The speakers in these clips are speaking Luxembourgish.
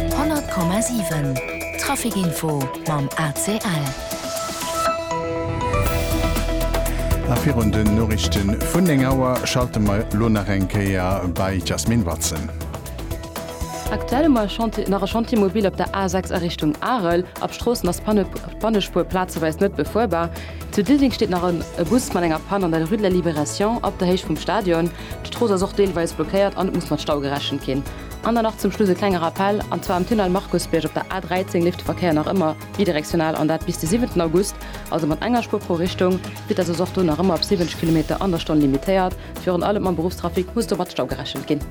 100,7 Trafic-Info mam ACL. A virun den Noriichte vun 9 Auer schalte mer elo nach eng Kéier bei d'Jasmine Watson. Aktuell hu mer nach e Chantier mobil op der A6 a Richtung Arel. Ab Stroossen ass d'Pannespuer plazeweis net befuerbar. Zu Diddeleng steet nach e Bus mat enger Pann an der Rue de la Libération op der Héicht vum Stadion. D'Strooss ass och deelweis blockéiert an et muss mat Stau gerechent ginn. An dann nach zum Schluss e klenge Rappell, an zwar am Tunnel Markusbierg op der A13 leeft de Verkéier nach ëmmer bidirektional an dat bis de siwenten August, also mat enger Spuer pro Richtung. D'Vitess ass och do nach ëmmer op 70 Kilometer an der Stonn limitéiert. Virun allem mam Beruffstrafic muss do mat Stau gerechent ginn.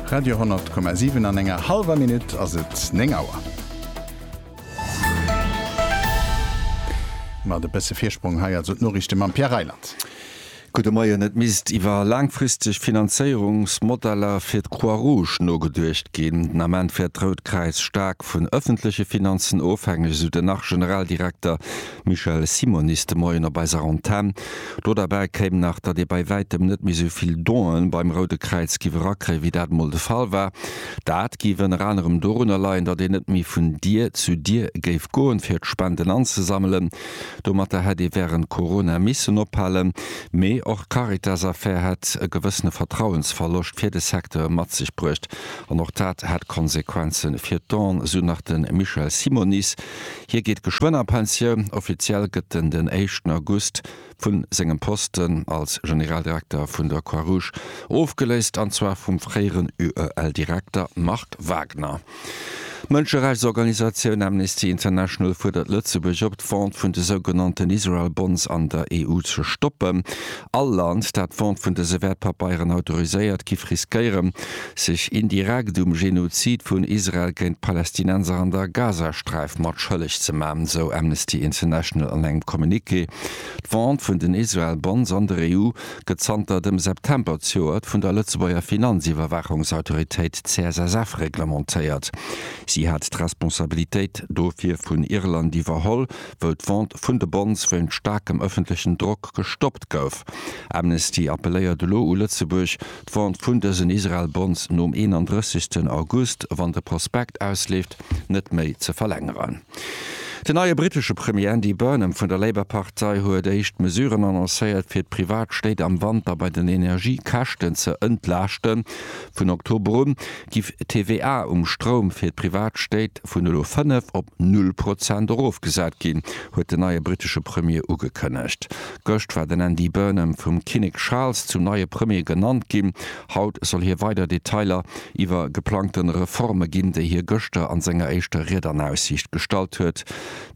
Radio 100,7 an enger hallwer Minutt ass et 9 Auer. Mat e bësse Virsprong hei also d'Noriichte mam Pierre Reyland. Gudde Moien. Et misst iwwer laangfristeg Finanzéierungsmodeller fir d'Croix Rouge nogeduecht ginn. Den Ament wär d'Rout Kräiz staark vun ëffentleche Finanzen ofhängeg, esou den Arche-Generaldirekter Michel Simonis de Moien op eiser Antenn. Do derbäi kéim nach, datt ee bei wäitem net méi esou vill Donë beim Roude Kräiz giff erakréien, wéi dat emol de Fall war. Dat giff ënner anerem dorunner leien, datt een net méi vun Dier zu Dier géif goen, fir d'Spenden anzesammelen. Domatter hätt ee wärend Corona missen ophalen, mee och d'Caritas-Affär hätt e gewëssene Vertrauensverloscht fir de Secteur mat sech bruecht an och dat hätt Konsequenze fir d'ONG, esou nach de Michel Simonis. Hie geet geschwënn a Pensioun, offiziell gëtt en den éischten August vu sengem Posten als Generaldirekter vun der Croix-Rouge ofgeléist, an zwar vum fréieren UEL-Direkter Marc Wagner. D'Mënscherechtsorganisatioun Amnesty International fuerdert Lëtzebuerg op, d'Vente vun de sougenannten Israel Bonds an der EU ze stoppen. All Land, dat d'Vente vun dëse Wäertpapeieren autoriséiert, giff riskéieren, sech indirekt um Genozid vun Israel géint d'Palästinenser an der Gazasträif mat schëlleg ze maachen, esou Amnesty International an engem Communiqué. D'Vente vun den Israel Bonds an der EU gëtt zanter dem September zejoert vun der Lëtzebuerger Finanziwwerwaachungsautoritéit CSSF reglementéiert. Si hat d'Responsabilitéit dofir vun Irland iwwerholl, wou d'Vente vun de Bonds wéint staarkem ëffentlechen Drock gestoppt gouf. Amnesty appelléiert elo u Lëtzebuerg, d'Vente vun dësen Israel-Bonds nom 31 August, wann de Prospekt ausleeft, net méi ze verlängeren. Den neie brittesche Premier Andy Burnham vun der Labour-Partei huet éischt Mesuren annoncéiert, fir d'privat Stéit am Wanter bei den Energiekäschten ze entlaaschten. Vun Oktober un giff d'TVA um Stroum fir d'privat Stéit vun elo 5 op null Prozent erofgesat ginn, huet den neie brittesche Premier ugekënnegt. Gëscht war den Andy Burnham vum Kinnek Charles zum neie Premier genannt ginn. Haut soll hie weider Detailer iwwer geplangte Reforme ginn, déi hie gëschter an senger éischter Ried an Aussiicht gestallt huet.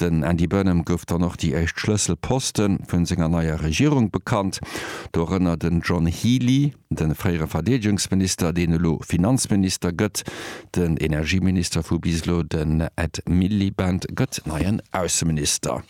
Den Andy Burnham gouf dann och déi éischt Schlësselposte vun senger neier Regierung bekannt, dorënner den John Healey, de fréiere Verdeedegungsminister, deen elo Finanzminister gëtt, den Energieminister vu bis elo, den Ed Miliband, gëtt neien Ausseminister.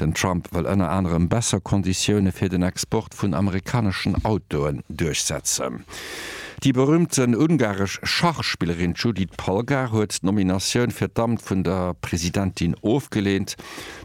Den Trump wëll ënner anerem besser Konditioune fir den Export vun amerikaneschen Autoen duerchsetzen. Déi berüümten ungaresch Schachspillerin Judit Polgar huet d'Nominatioun fir d'Amt vun der Presidentin ofgeleent.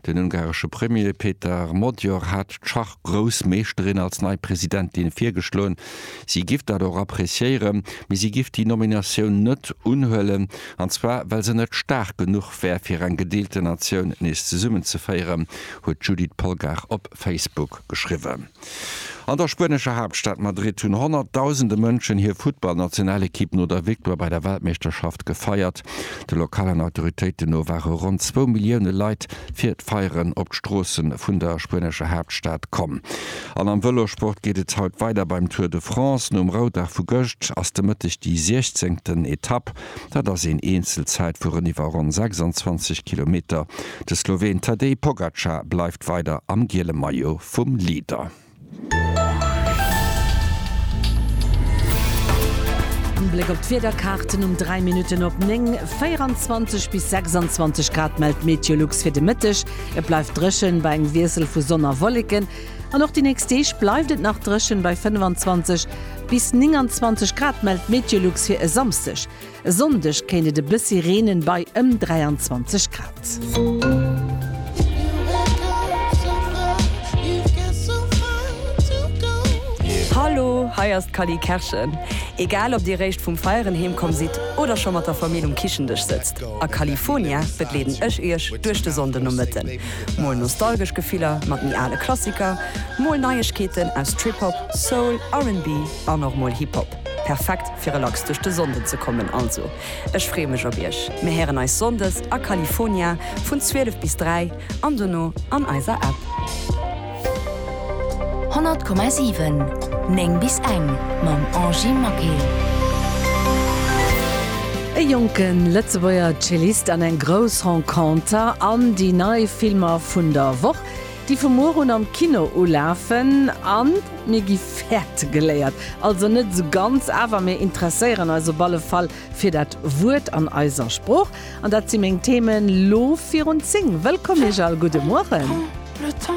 Den ungaresche Premier Peter Magyar hat d'Schachgroussmeeschterin als nei Presidentin virgeschloen. Si giff dat och appreciéieren, mee si giff déi Nominatioun net unhuelen, an zwar well se net staark genuch D'Abwehr fir eng gedeelte Natioun nees zesummenzeféieren, huet d'Judith Polgar op Facebook geschriwwen. An der spuenescher Haaptstad Madrid hunn honnertdausende Mënschen hir Futtballnationalekipp no der Victoire bei der Weltmeeschterschaft gefeiert. De lokalen Autoritéiten no ware ronn zwou Millioune Leit fir d'Feieren op d'Stroosse vun der spuenescher Haaptstad komm. An am Vëlosport geet et haut weider beim Tour de France. Nom Roudag vu gëscht ass de Mëtteg déi 16. Etapp. Dat ass een Eenzelzäit vu reniwwer ronn 26 Kilometer. De Sloween Tadej Pogacar bleift weider am giele Maillot vum Leader. En Bléck op d'Wiederkaarten um 3 Minutten op 9, 24 bis 26 Grad mellt d'Meteolux fir de Mëtteg. Et bleift dréchen bei engem Wiessel vu Sonn a Wolleken. An och déi nächst Deeg bleift et nach dréchen, bei 25 bis 29 Grad mellt d'Meteolux fir e Samsdeg. E Sonndeg kéint et e bëssi reenen, bei ëm 23 Grad. Hallo, hei ass d'Cally Kerschen. Egal ob dir réischt vum Feieren heem komm sidd oder scho mat der Famill um Kichendësch sëtzt, a Califonia begleeden ech iech duerch de Sonndenomëtten. Mol nostalgesch Gefiller mat méi ale Klassiker, mol Neiegkeeten aus Trip-Hop, Soul, RnB an och mol Hip-Hop. Perfekt fir relax duerch de Sonnden ze kommen. Also ech freeë mech op iech. Mir héieren eis Sonndes a Califonia vun 12 bis 3 an dono an eiser App. 100,7 9 bis eng mam Angie Maquet. E jonke Lëtzebuerger Cellist an eng grouss Renconter an déi nei Filmer vun der Woch, déi vu muer un am Kino ulafen. An mir gi fäerte geléiert, also net esou ganz, awer mir interesséieren eis op alle Fall fir dat Wuert an eiser Sprooch. An dat si meng Themen lo virun 10. Wëllkomm Iech all, gudde Mueren.